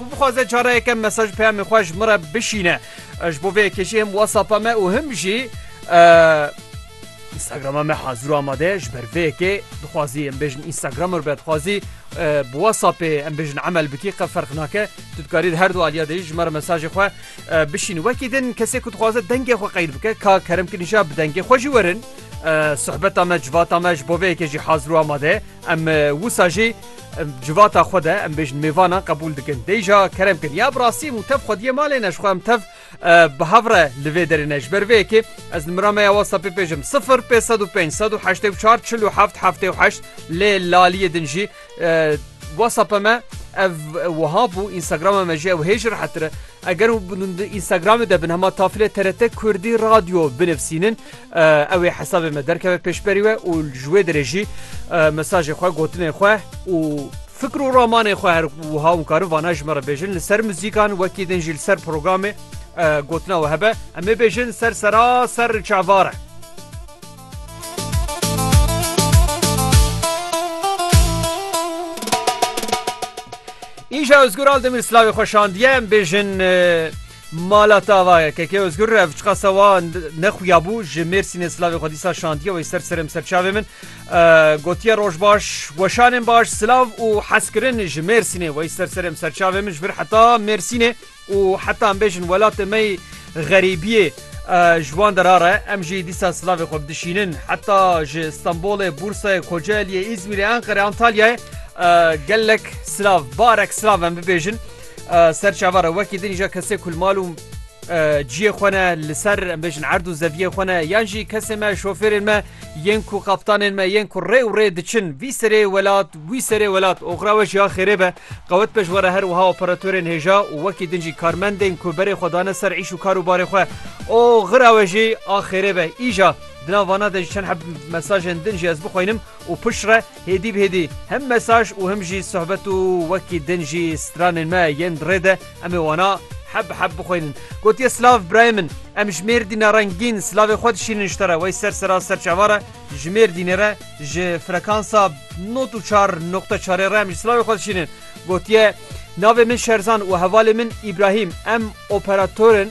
Ku bixwaze careyeke mesaj peyamê xwe ji min re bişîne. Ji bo vê yekê jî him WhatsApp-a me û him jî Instagram-a me hazir û amade ye. Ji ber vê yekê dixwazî em bêjin Instagram ir be dixwazî bi WhatsApp-ê em bêjin emel bikî qe ferq nake. Tu dikarî di her du aliya de jî ji me re mesajê xwe bişînî. Wekî din kesê ku dixwaze dengê xwe qeyd bike ka kerem kirî jî bi dengê xwe jî werin. Sohbeta me civata me ji bo vê yekê jî hazir û amade ye. Em wisa jî Em civata xwe de em bêjin mêvanan qebûl dikin. Dê jî kerem kin. Ya bi rastî em û tev xwediyê malê ne ji xwe em tev bi hev re li vê derê ne. Ji ber vê yekê ez nimira me ya WhatsAppê pêjim 0505 184 47 78 lê laliyê din jî WhatsAppê me ev wiha bû Instagramê me jî ew hê ji rehetir e. Eger Instagramê de bin hema tafilê TRT Kurdî Radyo binivîsînin Ew ê hesabê me derkeve pêşberî we û ji wê derê jî mesajê xwe, gotinên xwe û fikr û ramanên xwe her wiha hûn karin vana ji me re bêjin li ser muzîkan wekî din jî li ser programê gotina we hebe em ê bêjin ser sera ser çavar e. Îja Ozgur Aldemir slavê xwe şandiye em bêjin Mala tava ye KK Ozgur rev çiqa sewa nexuya bû ji Mêrsînê silavê xwe dîsa şandiye wê ser serê min ser çavê min gotiye roj baş weşanên baş silav û hezkirin ji Mêrsînê wey ser serê min ser çavê min ji vir heta Mêrsînê û heta em bêjin welatê me xerîbiyê ji wan dera re em jî dîsa silavê xwe bidişînin heta ji Stenbolê Bûrsayê Kocaeliyê Îzmîrê Enqerê Antalyayê gelek silav barek silav em bibêjin. Ser çava re wekî din jî kesê ku mal û ciyê xwe ne li ser em bêjin erd û zeviyê xwe ne yan jî kesê me şofêrên me yên ku qaptanên me yên ku rê û rê diçin vî serê welat wî serê welat oxra we jiya xêrê be qewet be ji were her wiha operatorên hêja û wekî din jî karmendên ku berê xwe dane ser îş û kar û barê xwe o xira we jî a xêrê be îja Dina vana de ji çend heb mesajên din jî ez bixwînim û pişre Hêdî bi hêdî hem mesaj û hem jî sohbet û wekî din jî stranên me yên di rê de em ê wana heb bi heb bixwînin. Gotiye silav birayê min, em ji Mêrdîna rengîn silavê xwe dişînin ji te re, wey ser sera ser çava re ji Mêrdînê re ji frekansa nod û çar noqte çarê re em jî silavê xwe dişînin. Gotiye navê min Şerzan û hevalê min Îbrahîm em operator in,